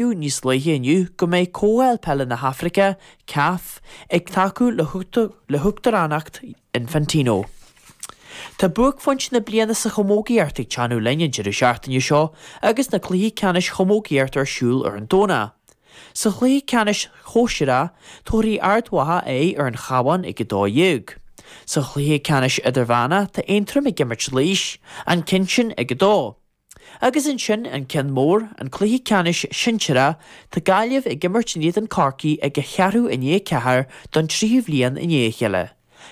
Fiú níos luaithe inniu go mbeidh Comhdháil Peile na hAfraice, caf, ag tacú le huachtaránacht Infantino. Tá buaicphointe na bliana sa chamógaíocht ag teannadh linn an deireadh seachtaine seo agus na cluichí ceannais chamógaíochta ar siúl ar an Domhnach. Sa chluiche ceannais shóisearach tabharfaidh Ard Mhacha aghaidh ar an Chábhán ag 12. Sa chluiche ceannais idirmheánach tá Aontroim ag imirt Laois, an cionn sin ag 2. Agus ansin an ceann mór, an cluiche ceannais sinsearach, tá Gaillimh ag imirt in éadan Corcaí ag ceathrú i ndiaidh a ceathair don tríú bliain i ndiaidh a chéile.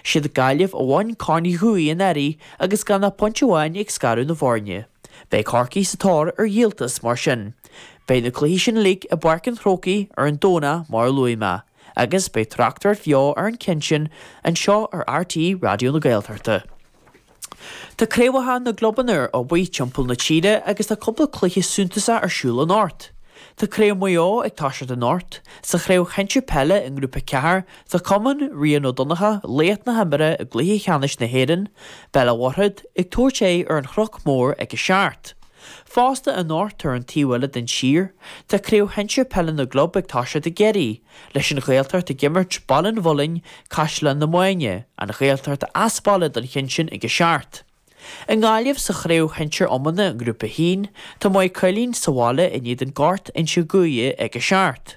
Siad Gaillimh a bhain Corn Uí Dhufaigh anuraidh agus gan ach pointe amháin ag scaradh na bhfoirne. Beidh Corcaigh sa tóir ar dhíoltas mar sin. Beidh na cluichí sin uilig i bPáirc an Chrócaigh ar an Domhnach mar a luaigh mé, agus beidh tráchtaireacht bheo ar an cheann sin anseo ar rte Raidió na Gaeltachta. Tá craobhacha na gclubanna ar obair timpeall na tíre agus tá cúpla cluiche suntasacha ar siúl anocht. Tá craobh Mhaigh Eo ag toiseacht anocht. Sa chraobh shinsir peile i ngrúpa 4 tá cumann Rian Ó Donnacha, laoch na himeartha i gcluiche ceannais na hÉireann, Béal an Mhuirthead, ag tabhairt aghaidh ar an Chnoc Mór ag a seacht. Fosta anocht ar an taobh eile den tír tá craobh shinsir peile na gclub ag toiseacht i gCiarraí. Leis an Ghaeltacht ag imirt Baile an Mhuilinn, Caisleán na Mainge, an Ghaeltacht as baile don chionn sin ag a seacht. I nGaillimh sa chraobh shinsir iomána i nGrúpa a hAon, tá Maigh Cuilinn sa bhaile in éadan Ghort Inse Guaire ag a seacht.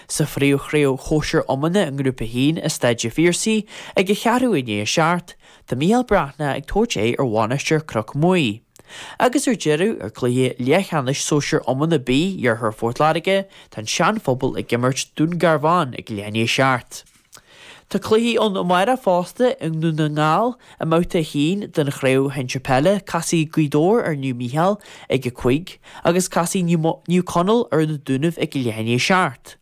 Sa phríomhchraobh shóisir iomána i nGrúpa a hAon i Staid an Phiarsaigh ag ceathrú i ndiaidh a seacht, tá Micheál Breathnach ag tabhairt aghaidh ar Mhainistir Chnoc Muaidhe. Agus ar deireadh, i gcluiche leathcheannais Sóisear Iomána B Iarthar Phort Láirge, tá an Seanphobal ag imirt Dún Garbhán ag a leath i ndiaidh a seacht. Tá cluichí ann amárach fosta i nDún na nGall, i mbabhta a haon den Chraobh Shinsir Peile casfaidh Gaoth Dobhair ar Naomh Mícheál ag a cúig, agus casfaidh Naomh Conaill ar Na Dúnaibh ag a leath i ndiaidh a seacht.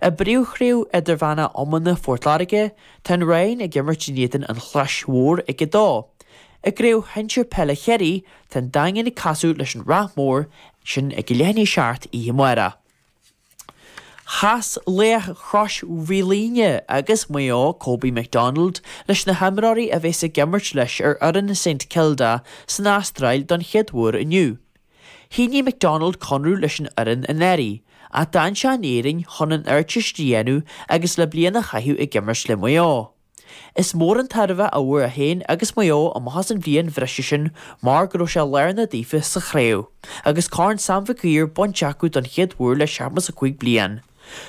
I bpríomhchraobh Idirmheánach Iomána Phort Láirge, tá an Rinn ag imirt in éadan an Chlais Mhór ag 2. I gCraobh Shinsir Peile Chiarraí, tá an Daingean ag casadh leis an Ráth Mhór, sin ag a leath i ndiaidh a seacht oíche amárach. Chas laoch Chrois Mhaoilíona agus Mhaigh Eo, Kobe McDonald, leis na himreoirí a bheas ag imirt leis ar fhoireann Saint Kilda san Astráil don chéad uair inniu. Shínigh McDonald conradh leis an fhoireann anuraidh, ach d'fhan sé in Éirinn chun an Ardteist a dhéanamh agus le bliain a chaitheamh ag imirt le Maigh Eo. Is mór an tairbhe a fhuair é féin agus Maigh Eo amach as an bhliain bhreise sin mar go raibh sé lárnach daofa sa chraobh agus Corn Sam Mhic Uidhir bainte acu don chéad uair le seachtó 5 bliain.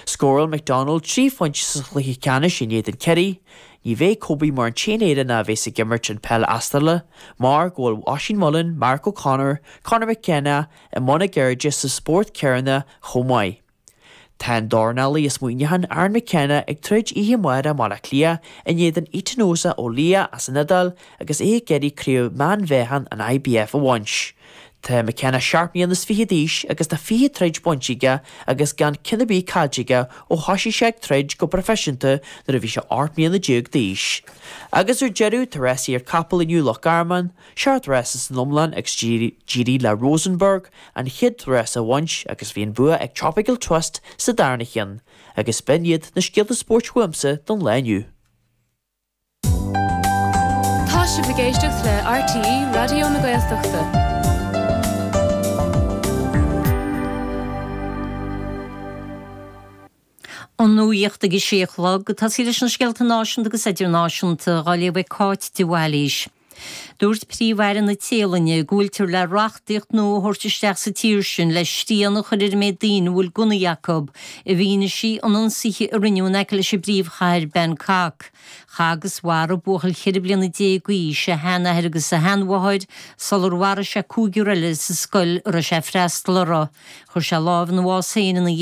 Scórail McDonald trí phointe sa chluiche ceannais in éadan Kerry. Ní bheidh Kobe mar an t-aon Éireannach a bheas ag imirt an pheil Astrálach, mar go bhfuil Oisín Mullin, Mark O'Connor, Conor McKenna i mbun a gceirde sa spórt céanna chomh maith. Tá an dornálaí as Muineachán, Aaron McKenna, ag troid oíche amárach i mBaile Átha Cliath in éadan Etinosa Oliha as an Iodáil agus é ag iarraidh craobh meánmheáchan an IBF a bhaint. Tá McKenna seacht mbliana is fiche d'aois agus tá fiche troid bainte aige agus gan ceann ar bith caillte aige ó thosaigh sé ag troid go proifisiúnta nuair a bhí sé ocht mbliana déag d'aois. Agus ar deireadh tá rásaí capall inniu i Loch Garman, seacht rás san iomlán agus d'éirigh le Rosenborg an chéad rás a bhaint agus bhí an bua ag Tropical Twist sa darna ceann. Agus b'in iad na scéalta spóirt uaimse don lá inniu. Tá sibh ag éisteacht le RTÉ Raidió na Gaeltachta. An nuacht ag a sé a chlog. Fáilte, leis na scéalta náisiúnta agus idirnáisiúnta á léamh ag Cáit de Bhailís. Dúirt Príomh-Aire na Téalainne go bhfuiltear le reachtaíocht nua a thabhairt isteach sa tír sin le srian a chur ar an méid daoine a bhfuil gunnaí acu, i bhfianaise an ionsaithe a rinneadh in aice leis an bpríomhchathair Bangkok. Chaith agus mharaigh buachaill ceithre bliana déag d'aois a sheanathair agus a sheanmháthair sular mharaigh sé cúigear eile sa scoil a raibh sé ag freastal uirthi. Chuir sé lámh ina bhás féin ina dhiaidh sin.